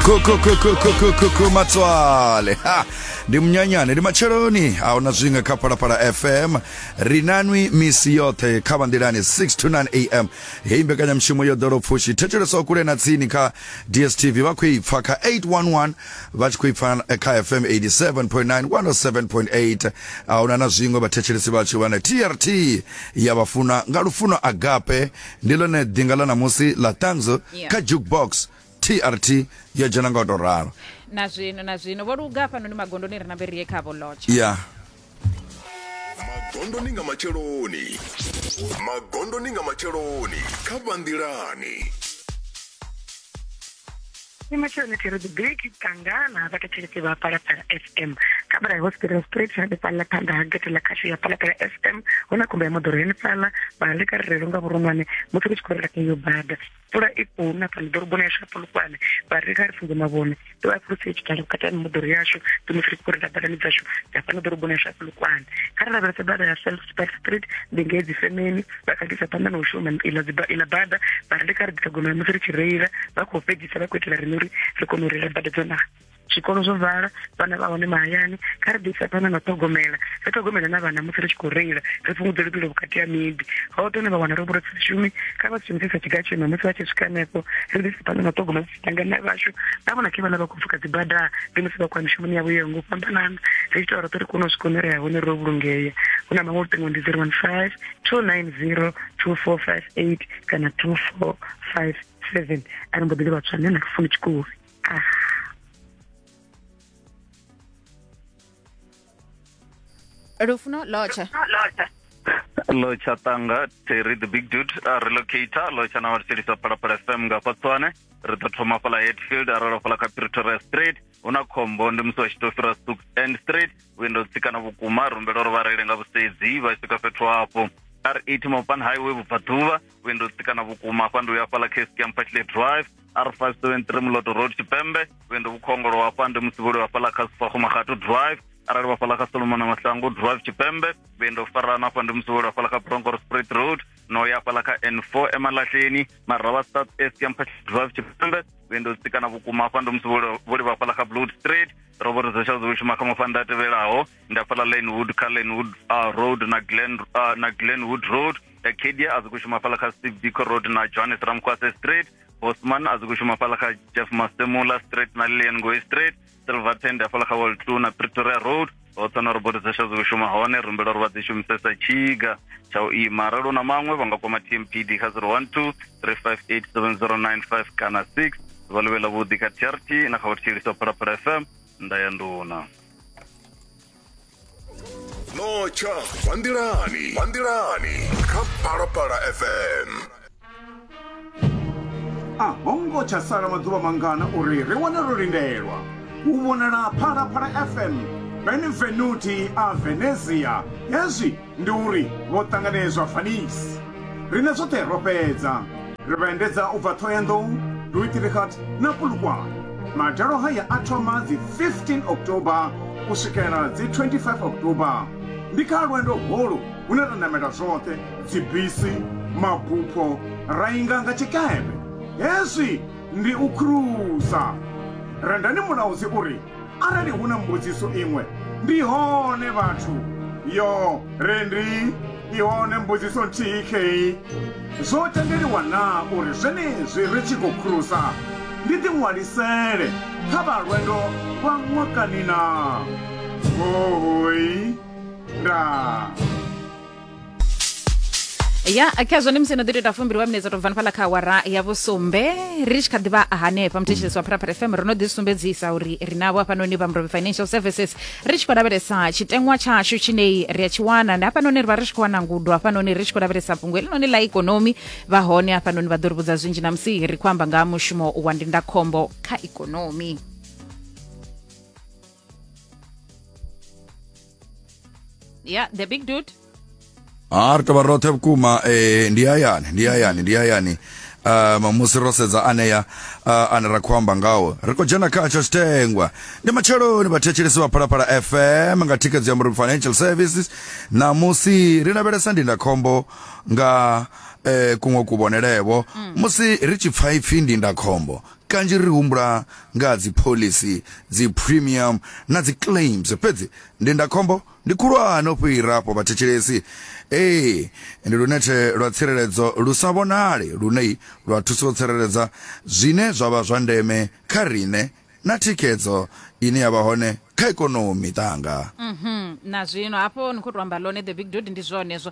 kukukukukukukukumatswale ha ndi munyanyane ndi matsheloni ahuna zwinga kha phalaphala fm ri nanwi misi yoṱhe kha vanḓilani 6 to 9 am heyi mbekanyamushumo yo ḓolo pfushi thetshelesa kule na tsini kha dstv vha khou i pfa kha 811 vha tshi khou i pfa eh, kha fm 87.9 107.8 ahuna na zwiṅwe vhathetshelesi vhashu vhane trt ya vhafuna nga lufuno agape ndi ḽone ḓinga ḽa ṋamusi ḽa ṱanzo yeah. kha jukebox trt yo dzhena nga u tou ralo na zwino na zwino vho luga hafhanoni magondoni ri na vhe rie khavho lotsha ya yeah. magondoni nga matsheloni magondoni nga matsheloni kha vhanḓilani Ni matsheloni thiri dzi big tangana vha thetshelesi vha palapala fm kha bala ya hospital street hanefhaḽa phanḓa ha gete ḽa khasho ya palapala fm hu na khumba ya moḓoro henefhaḽa vha leka rirelo nga vhuronwane musi ri tshi khou rela kha iyo bada pfula i khou na fhano ḓoroboni yashu ya polokwane vha ri kha ri funze mavhone ḓo vha fhulusi i tshikhala vhukati ha mimoḓoro yashu ndi musi ri tshi khou rela badani dzashu dza fhano ḓoroboni yashu ya polokwane kha ri lavhelese bada ya self Park Street ndi ngei dzi femeni vha kha ḓisa phanḓa na u shuma iḽa dzi iḽa bada vha ri ndi kha ri ḓisa gomela musi ri tshi reila vha khou fhedzisa vha khou itela riṋe uri ri kone u reila bada dzo naha zwikolo zwo vala vhana vha hone mahayani kha ri ḓisa phanḓa na ṱhogomela ri ṱhogomela na vhana musi ri tshi khou reila ri fhungudze luvhilo vhukati ha miḓi hoṱhe hune vha wana ro vhura si shumi kha vha si shumisesa tshiga tshema musi vha tshi swika hanefho ri ḓisa phanḓa na ṱhogomela vhangana vhashu nda vhona ke vhana vha khou pfuka dzibada ndi musi vha khou ya mishumoni yavho yo ngo fhambanana ri ita uri ri kone u swika hune ri ya hone ro vhulungea hu na maṅwe luṱingo ndi zero one five two nine zero two four five eight kana two four five seven a ri mbo ḓi ḽi vhatswa nṋe na lufuni tshikule ah lufuno lotsha lotsha tanga terry the big dude a relocator lotsha na vhathetshelisa phalaphala fm nga fatswane ri ḓo thoma fhala hetfield a rolo fhala kha pretoria street hu na khombo ndi musi vha tshi tou fhira sux end street windo tsikana vhukuma rumbela uri vha reile nga vhusedzi vha swika fhethu hafho r eight mopan highway vhubvaḓuvha windo tsikana vhukuma hafha ndi uya fhala cascamp pashley drive alpha student re moloto road tshipembe vhuendo vhukhongolo hafha ndi musivhuli wa fhaḽa kha sifaxomaxatu drive arali wa fhaḽa kha solomona masango drive tshipembe vhuendo farana hafha ndi musivhuli wa fhaḽa kha broncor sprit road no ya fhaḽa kha n four emalahleni maravha south east ya mphaxi drive tshipembe vhuendo tsikana vhukuma hafha ndi musivhuli vha fhaḽa kha blood street robert zesha zwi shuma kha mafanda a tevhelaho ndi a fhaḽa lanewood kha lanewood uh, road na glen, uh, na glenwood road dakedia a zwi khou shuma fhala kha steve biko road na johannes ramkwase street bosman a zwi khou shuma fhala kha jeff masemula street na lilian ngoe street silver tend a fhala kha wall two na pretoria road hoṱhe na robot dza sha zwi shuma hone ri humbela uri vha dzi shumisesa tshiga tsha u ima arali u na maṅwe vha nga kwama tmpd kha 012 3587095 kana 6 vha luvhela vhuḓi kha trt na kha vhuthetshelisi wa phalaphala fm nda ya nduna no tsha zwa nḓilani zwa nḓilani kha phalaphala fm a ho ngo tsha sala maḓuvha mangana uri ri wane ro lindelwa u vhonala phalaphala fm benvenuti a venezia hezwi Ndi uri vho ṱanganedzwa Vanice. Riṋe zwoṱhe ro fhedza. Ri vha endedza u bva Thohoyandou, Rooiterigat na Polokwane. Madalo haya a thoma dzi 15 October u swikela dzi 25 October. Ndi kha lwendo holu hune ra namela zwoṱhe, dzibisi, mabupho, ra inga nga tshikepe. Hezwi ndi u khurusa. Rendani Mulaudzi u ri, Arali hu na mbudziso iṅwe, ndi hone vhathu. Yo, Rendi, i hone mbudziso nthihi khei. Zwo tendeliwa naa uri zwenezwi ri tshi khou khurusa, ndi ḓiṅwalisele kha vha lwendo lwa ṅwakani naa? Huhuy! Ndaa. ya kha zwone musi no ḓi tou ita fumbili wa minetse to bvani fhaḽa kha awara ya vhusumbe ri tshi kha ḓivha hanefha muthetshelesi wa pharapara fm ro no ḓi sumbedzisa uri ri navho hafhanoni vha mrobe financial services ri tshi khou lavhelesa tshiteṅwa tshashu tshinei ri a tshi wana ndi hafhanoni ri vha ri tshi khou wana ngudo hafhanoni ri tshi khou lavhelesa fhungo helinoni ḽa ikonomi vha hone hafhanoni vha ḓo ri vhudza zwinzhi na musi ri khou amba nga ha mushumo wa ndindakhombo kha ikonomi Yeah, the big dude. ha ri tovha roṱhe vhukuma eh, ndi hayani ndi hayani ndi hayani um, musi ro sedza anea uh, ane ra khou amba ngawo ri khou dzhena kha tsha tshitengwa ndi matsheloni vhathetshelesi vha phalaphala fm nga thikedzo ya muruk financial services namusi ri lavhelesa ndindakhombo nga eh, kuṅwe kuvhonelevo musi ri tshi pfa ipfi ndindakhombo Kanzhi ri humbula nga ha dziphoḽisi, dziphurimiamu na dziclaims, fhedzi ndindakhombo ndi khulwane u fhira afho. Vhathetshelesi, Ee, ndi lunethe lwa tsireledzo lu sa vhonali lune lwa thusa u tsireledza zwine zwa vha zwa ndeme kha riṋe na thikhedzo ine ya vha hone kha ikonomi. Miṱanga. Nazwino hafho ni khou tou amba ḽone The Big Dude, ndi zwone hezwo.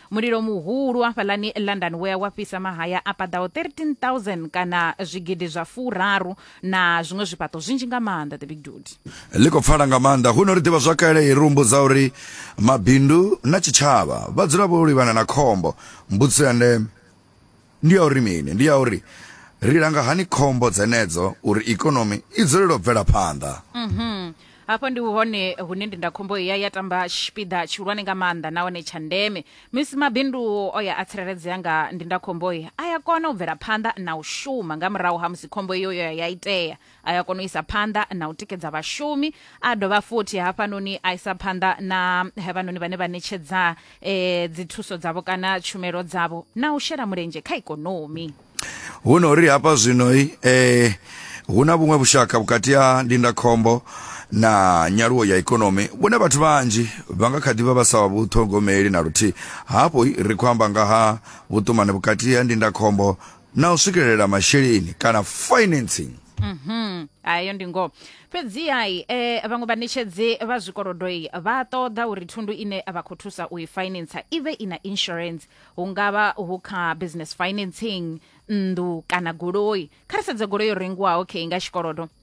Mulilo muhulu wa fhaḽani London wea wa fhisa mahaya a paḓaho 13000 kana zwigidi zwa furaru na zwiṅwe zwifhaṱo zwinzhi nga maanḓa the big dude. Ḽi khou pfala nga maanḓa huno ri ḓivha zwakale i ri humbudza uri mabindu na tshitshavha vha dzula vho livhana na khombo. Mbudziso ya ndeme Ndi ya uri mini? Ndi ya uri ri langa hani khombo dzenedzo uri ikonomi i dzulele u bvela phanḓa. Mhm. Hafho ndi hone hune ndindakhombo ya ya tamba tshipiḓa tshihulwane nga maanḓa nahone tsha ndeme. Musi mabindu o ya a tsireledzea nga ndindakhombo, a ya kona u bvela phanḓa na u shuma nga murahu ha musi khombo iyo yo ya ya itea. a ya kona u isa phanḓa na u tikedza vhashumi a dovha futhi hafhanoni a isa phanḓa na havhanoni vhane vha ṋetshedza eh, dzithuso dzavho kana tshumelo dzavho na u shela mulenzhe kha ikonomi hu no ri hafha zwinoi eh, hu na vhuṅwe vhushaka vhukati ha ndindakhombo na nyaluwo ya ikonomi vhune vhathu vhanzhi vha nga kha ḓi vha vha sa vhu ṱhogomeli na luthihi hafho ri khou amba nga ha vhuṱumani vhukati ha ndindakhombo na u swikelela masheleni kana financing Mhm. ayo ndi ngoho fhedzihai eh, vhaṅwe vhaṋetshedzi vha zwikolodoi vha ṱoḓa uri thundu ine vha khou thusa u i finance i vhe i na insurance hu nga vha hu kha business financing nnḓu kana goloi kha ri sedze goloi yo rengiwaho khe nga tshikolodo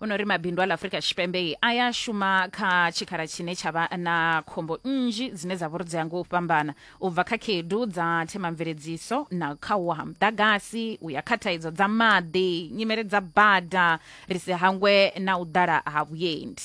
o no ri mabindu a ḽa afurika tshipembe a ya shuma kha tshikhala tshine tsha vha na khombo nnzhi dzine dza vhori dzi ngo u fhambana u bva kha khedu dza themamveledziso na kha u ha muḓagasi u ya kha thaidzo dza maḓi nyimele dza bada ri si hangwe na u ḓala ha vhuendi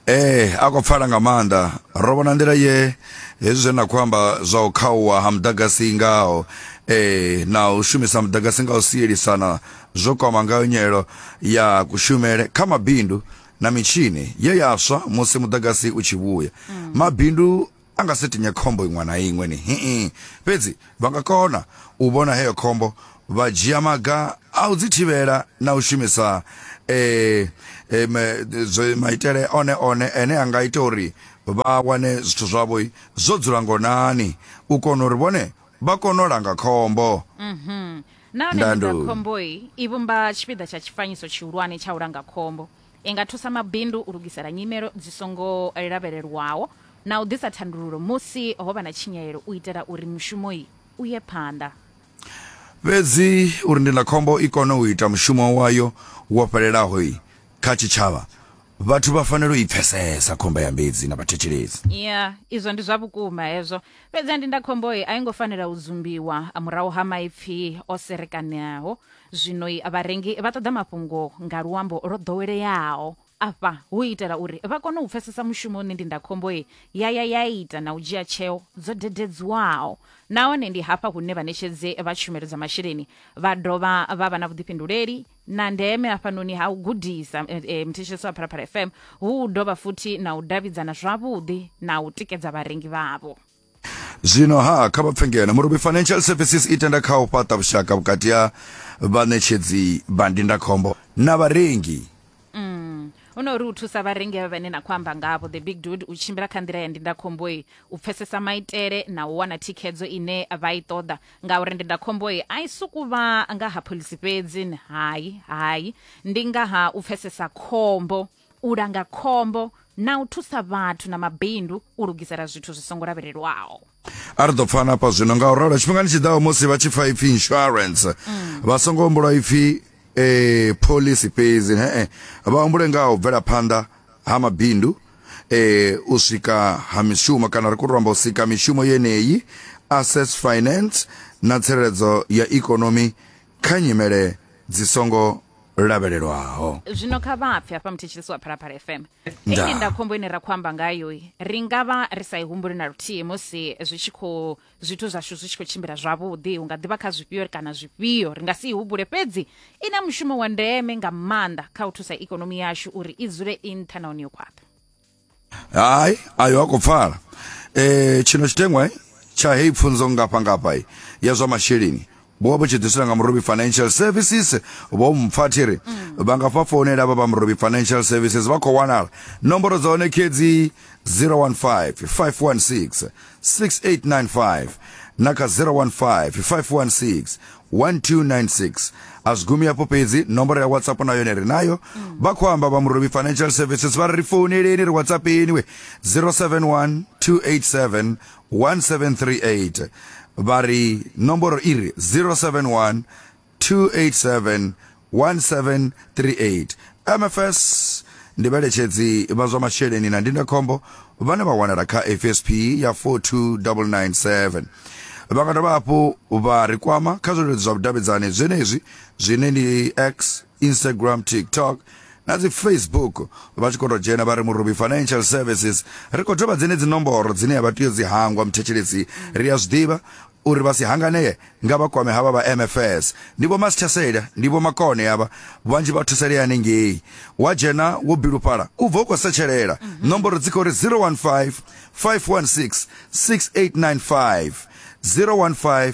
ee eh, a khou pfala nga maanḓa ro vhona nḓila ye hezwi zwe na khou amba zwa u khauwa ha muḓagasi ngaho ee eh, na u shumisa muḓagasi nga u sielisana zwo kwama ngayo nyelelo ya kushumele kha mabindu na mitshini ye ya swa musi muḓagasi u tshi vhuya mabindu a nga si tinye khombo iṅwe na iṅwe ni hii fhedzi vha nga kona u vhona heyo khombo vha dzhia maga a u dzi thivhela na u shumisa eh, eh, me- zwe- maitele one one ene a nga ita uri vha wane zwithu zwavho zwo dzula ngonani u kona uri vhone vha kone u langa khombo mhm. nahone ndindakhomboyi i vhumba tshipiḓa tsha tshifanyiso tshihulwane tsha u langa khombo i nga thusa mabindu u lugisela nyimelo dzi songo lavhelelwaho na u ḓisa thandululo musi ho vha na tshinyalelo u itela uri mushumoyi u ye phanḓa fhedzi uri ndindakhombo i kone u ita mushumo wayo wo fhelelaho kha tshitshavha vhathu vha fanela u i pfesesa khomba ya mbedzi na vhathetshelesi ya izwo ndi zwa vhukuma hezwo fhedzi ndi nda khomboyi a i ngo fanela u dzumbiwa a murahu ha maipfi o serekaneaho zwino i vharengi vha ṱoḓa mafhungo nga luambo lwo ḓoweleaho afha hu itela uri vha kone u pfesesa mushumo une ndindakhomboyi ya ya ya ita na u dzhia tsheo dzo dededziwaho nahone ndi hafha hune vhaṋetshedzi vha tshumelo dza masheleni vha dovha vha vha na vhuḓifhinduleli na ndeme hafhanoni ha u gudisa eh, eh, mthetshelesi wa phalaphala fm hu u dovha futhi na u davhidzana zwavhuḓi na u tikedza vharengi vhavho zwino ha kha vha pfe ngeno murubi financial services i tenda kha u fhaṱa vhushaka vhukati ha vhaṋetshedzi vha ndindakhombo na vharengi Mm. u no uri u thusa vharengi avha vhane na khou amba ngavho the big dude u tshimbila kha nḓila ya ndindakhomboyi u pfesesa maitele na u wana thikhedzo ine vha i ṱoḓa ngauri ndindakhombo i a i suku vha nga ha phoḽisi fhedzi ni hai hai ndi nga ha u pfesesa khombo u langa khombo na u thusa vhathu na mabindu u lugisela zwithu zwi songo lavhelelwaho a ri ḓo pfana hafha zwino nga u ralo tshifhingani tshi ḓaho musi vha tshi pfa ipfi insurance vha songo humbula ipfi eh, pholisi fhedzi he-e vha humbule nga ha u bvela phanḓa ha mabindu e, u swika ha mishumo kana ri khou tou amba u sika mishumo yeneyi access finance na tsireledzo ya ikonomi kha nyimele dzi songo lavhelelwaho zwino kha vha pfe hafha muthetshelesi wa phalaphala fm Nda. eyi nda khombo ine ra khou amba ngayo ri nga vha ri sa i humbuli na luthihi musi zwi tshi khou zwithu zwashu zwi tshi khou tshimbila zwavhuḓi hu nga ḓivha kha zwifhio kana zwifhio ri nga si i hubule fhedzi i na mushumo wa ndeme nga maanḓa kha u thusa ikonomi yashu uri i dzule i nṱha nahone yo khwaṱha hayi ayo ha khou pfala um tshino tshiteṅwa tsha heyi pfunzo ngafha ngafha ya zwa masheleni vho vha vho tshi ḓisela nga murobi financial services vho mpfa thi ri mm. vha nga fha founela vha vha murobi financial services vha khou wanala nomboro dza hone khedzi 015 516 6895 na kha 015 516 1296 a zwi gumi afho fhedzi nomboro ya whatsapp na yone ri nayo mm. vha khou amba vha murobi financial services vha ri ri founeleni ri whatsapp eniwe 071 287 1738 vha ri nomboro i ri 071 287 1738 mfs ndi vheletshedzi vha zwa masheleni na ndindakhombo vhane vha wanala kha fsp ya 42997 vha nga dovha hafhu vha ri kwama kha zwileludzi zwa vhudavhidzani zwenezwi zwine ndi x instagram tiktok na dzi facebook vha tshi khou tou dzhena vha ri murubi financial services ri khou dovha dzenedzi nomboro dzine ya vha tea dzi hangwa muthetshelesi ri a zwiḓivha uri vha si hanganee nga vha kwame havha vha mfs ndi vho masithasela ndi vho makone avha vhanzhi vha thusalea hanengei wa dzhena wo bilufhala u bva u khou setshelela mhm. nomboro dzi khou ri 015 516 6895 015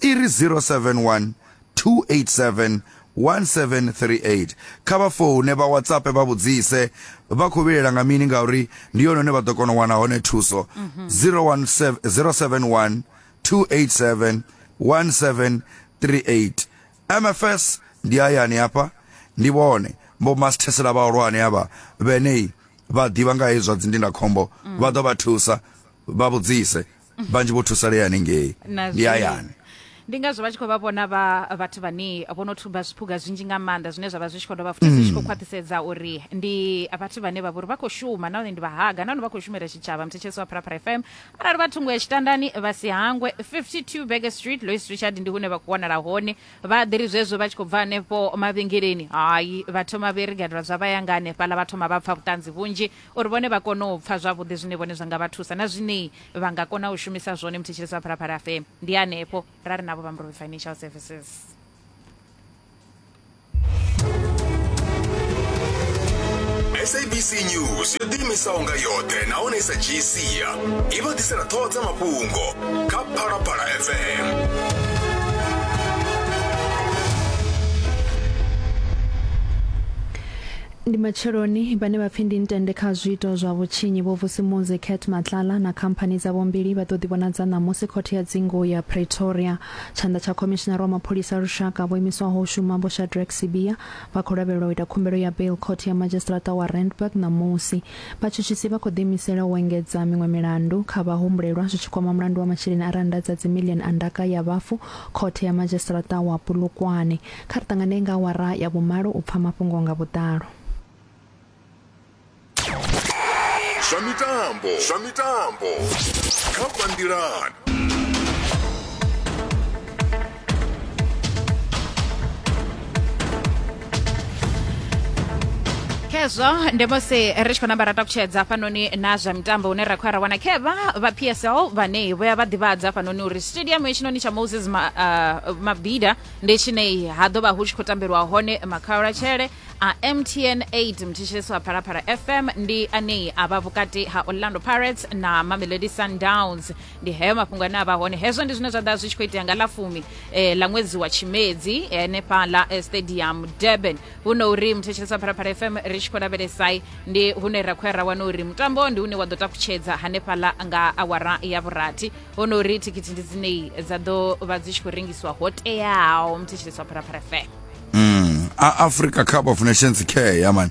i ri 071 287 1738. Kha vha foune, vha WhatsApp, vha vhudzise vha khou vhilela nga mini ngauri ndi yone hune vha ḓo kona u wana hone thuso. 071 287 1738. MFS ndi hayani hafha ndi vhone vho masithesela vhahulwane havha vhenei vha ḓivha nga hezwi zwa dzindindakhombo vha ḓo vha thusa vha vhudzise vhanzhi vho thusalea hanengei Na ndi zwi- hayani ndi ngazwo vha tshi khou vha vhona vha vhathu vhane vho no thuba zwiphuga zwinzhi nga maanḓa zwine zwa vha zwi tshi khou dovha futhi zwi tshi khou khwaṱhisedza uri ndi vhathu vhane vha vha uri vha khou shuma nahone ndi vhahaga nahone vha khou shumela tshitshavha mthetshelesi wa pharapara fm arali vha thungo ya tshitandani vha si hangwe 52 bege street lois richard ndi hune vha khou wanala hone vha ḓiri zwezwo vha tshi khou bva hanefho mavhengeleni hayi vha thoma vhe rigadela zwa vha yanga hanefhaḽa vha thoma vha pfa vhuṱanzi vhunzhi uri vhone vha kone u pfa zwavhuḓi zwine vhone zwa nga vha thusa na zwine vha nga kona u shumisa zwone muthetshelesi wa phalaphala fm ndi hanefho ra ri navho vha murove financial services sabc news yo ḓiimisaho nga yoṱhe nahone i sa dzhii sia i vha ḓisela ṱhoho dza mafhungo kha phalaphala fm Ndi matsheloni, vhane vha pfi ndi ntende kha zwiito zwa vhutshinyi Vho Vusi Muzi, Kurt Matlala na khamphani dzavho mbili vha ḓo ḓivhonadza ṋamusi Khothe ya Dzingu ya Pretoria. Tshanḓa tsha Khomishinara wa Mapholisa a Lushaka vho imiswaho u shuma Vho Shadrack Sibiya vha khou lavhelelwa u ita khumbelo ya bail Khothe ya Madzhisiṱiraṱa wa Randburg ṋamusi. Vhatshutshisi vha khou ḓiimisela u engedza miṅwe milandu kha vhahumbulelwa zwi tshi kwama mulandu wa masheleni a rannda dza dzimiḽioni a ndaka ya vhafu Khothe ya Madzhisiṱiraṱa wa Polokwane. Kha ri ṱanganee nga awara ya vhumalo u pfa mafhungo nga vhuḓalo. Zwa mitambo, zwa mitambo kha Bandilan. khezwo ndi musi ri tshi khou namba ra takutshedza hafhanoni na zwa mitambo hune ra khou ya ra wana khevha vha psl vhane vhoya vha ḓivhadza hafhanoni uri stadium hetshinoni tsha moses Ma, uh, mabida ndi tshine ha ḓo vha hu tshi khou tambelwa hone makhaulatshele a mtn 8 mthetshelesi wa phalaphala fm ndi anei a vha vhukati ha orlando pirates na mamelodi sundowns ndi heyo mafhungo ane a vha hone hezwo ndi zwine zwa ḓa zwi tshi khou itea nga ḽa fumi eh, ḽa ṅwedzi wa tshimedzi henefhaḽa eh, stadium durban huno uri mthetshelesi wa phalaphala fm ri tshi khou lavhelesai ndi hune ra khou ya ra wana uri mutambo ndi une wa ḓo takutshedza hanefhaḽa nga awara ya vhurathi ho no uri thikhithi ndi dzinei dza ḓo vha dzi tshi khou rengiswa ho teaho mthetsheleswa pharapara fm Mm. A Africa Cup of Nations care ya man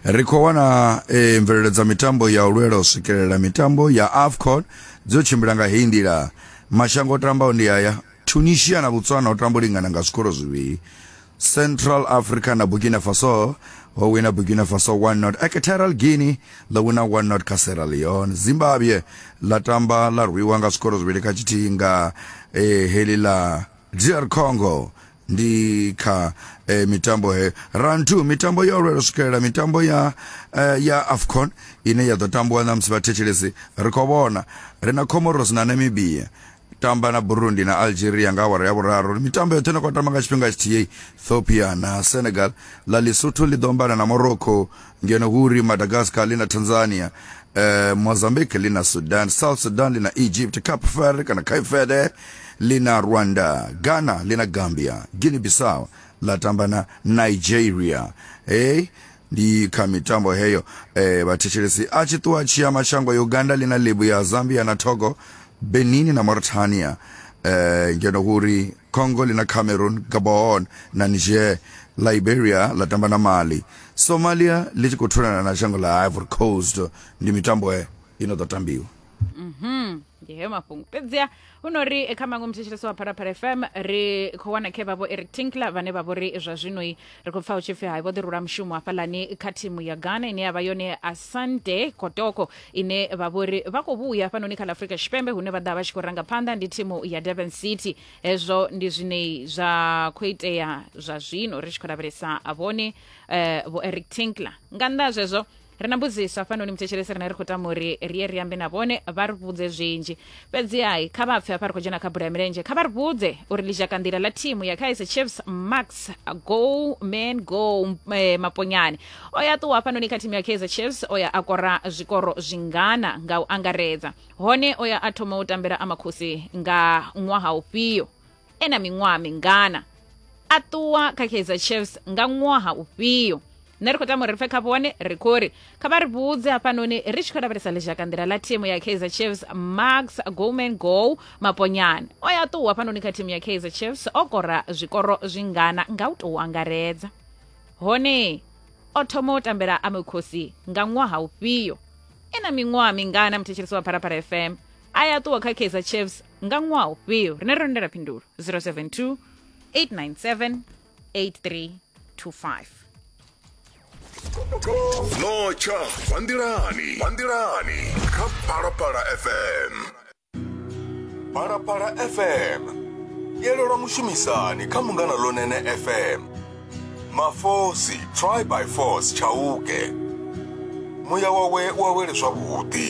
ri khou wana e, mvelelo dza mitambo ya u lwela u swikelela mitambo ya AFCON dzo tshimbila nga heyi nḓila mashango o tambaho ndi aya Tunisia na Botswana o tamba u lingana nga zwikoro zwivhili Central Africa na Burkina Faso ho wina Burkina Faso 1-0. Equatorial Guinea ḽo wina 1-0 kha Sierra Leone. Zimbabwe ḽa tamba ḽa rwiwa nga zwikoro zwivhili kha tshithihi nga eh, heḽi ḽa DR Congo ndi kha eh, mitambo he rantu mitambo yo lwela swikelela mitambo ya eh, ya afcon ine ya ḓo tambiwa na musi vhathetshelesi ri khou vhona ri na comoros na namibia tamba na burundi na algeria nga awara ya vhuraru mitambo yoṱhe ine khou tamba nga tshifhinga tshithihi ethiopia na senegal ḽa lesotho ḽi ḓo ambana na morocco ngeno hu uri madagascar ḽi na tanzania eh, mozambique ḽi na sudan south sudan ḽi na egypt cape verde kana cape verde ḽi na rwanda ghana ḽi na gambia guinea bissau ḽa tamba na nigeria hey ndi kha mitambo heyo eh, vhathetshelesi a tshi ṱuwa tshi ya mashango ya uganda ḽi na lebu ya zambia na togo benin na mauritania eh, ngeno huri congo ḽi na cameroon gabon na niger liberia ḽa tamba na mali somalia ḽi tshi khou thulana na shango ḽa ivory coast ndi mitambo eh, i no ḓo tambiwa ndi heyo mafhungo fhedziha hu no ri eh, kha maṅwe muthetshelesi wa phalaphala fm ri khou wana khe vhavho eric tinkler vhane vha vho ri zwa zwinoi ri khou pfa hu tshi pfi hai vho ḓi rula mushumo hafhalani kha thimu ya ghana ine ya vha yone asante kotoko ine vha vho ri vha khou vhuya hafhanoni kha ḽa afrika tshipembe hune vha ḓa vha tshi khou ranga phanḓa ndi thimu ya durban city hezwo ndi zwine zwa khou itea zwa zwino ri tshi khou lavhelesa vhone eh, vho eric tinkler nga nnḓa ha zwezwo ri na mbudziso hafhanoni muthetshelesi rine ri khou tama uri ri ye ri ambe na vhone vha ri vhudze zwinzhi fhedziha kha vha pfe hafha ri khou dzhena kha bula ya milenzhe kha vha ri vhudze uri ḽizhakanḓila ḽa thimu ya kaiser chiefs max go man go eh, maponyane o ya ṱuwa hafhanoni kha thimu ya kaiser chiefs o ya a kora zwikoro zwingana nga u angaredza hone o ya a thoma u tambela amakhosi nga ṅwaha ufhio e na miṅwaha mingana a ṱuwa kha kaizer chiefs nga ṅwaha ufhio nṋe ri khou tama uri ri pfe khavho hone ri khou ri kha vha ri vhudze hafhanoni ri tshi khou lavhelesa ḽizhaka nḓila ḽa thimu ya kaizer chiefs max goman go maponyane o ya ṱuwa hafhanoni kha thimu ya kaizer chiefs o kora zwikoro zwingana nga u tou angaredza hone o thoma u tambela amekhosi nga ṅwaha ufhio e na miṅwaha mingana muthetshelesi wa pharapara fm a ya ṱuwa kha kaizer chiefs nga ṅwaha ufhio rine ro lindela phindulo 072 897 8325 notsha vha nḓilani vha nḓilani kha phalaphala fm phalaphala fm yelelwa mushumisani kha mungana lonene fm mafosi try by force tshauke muya wawe u awele zwavhuḓi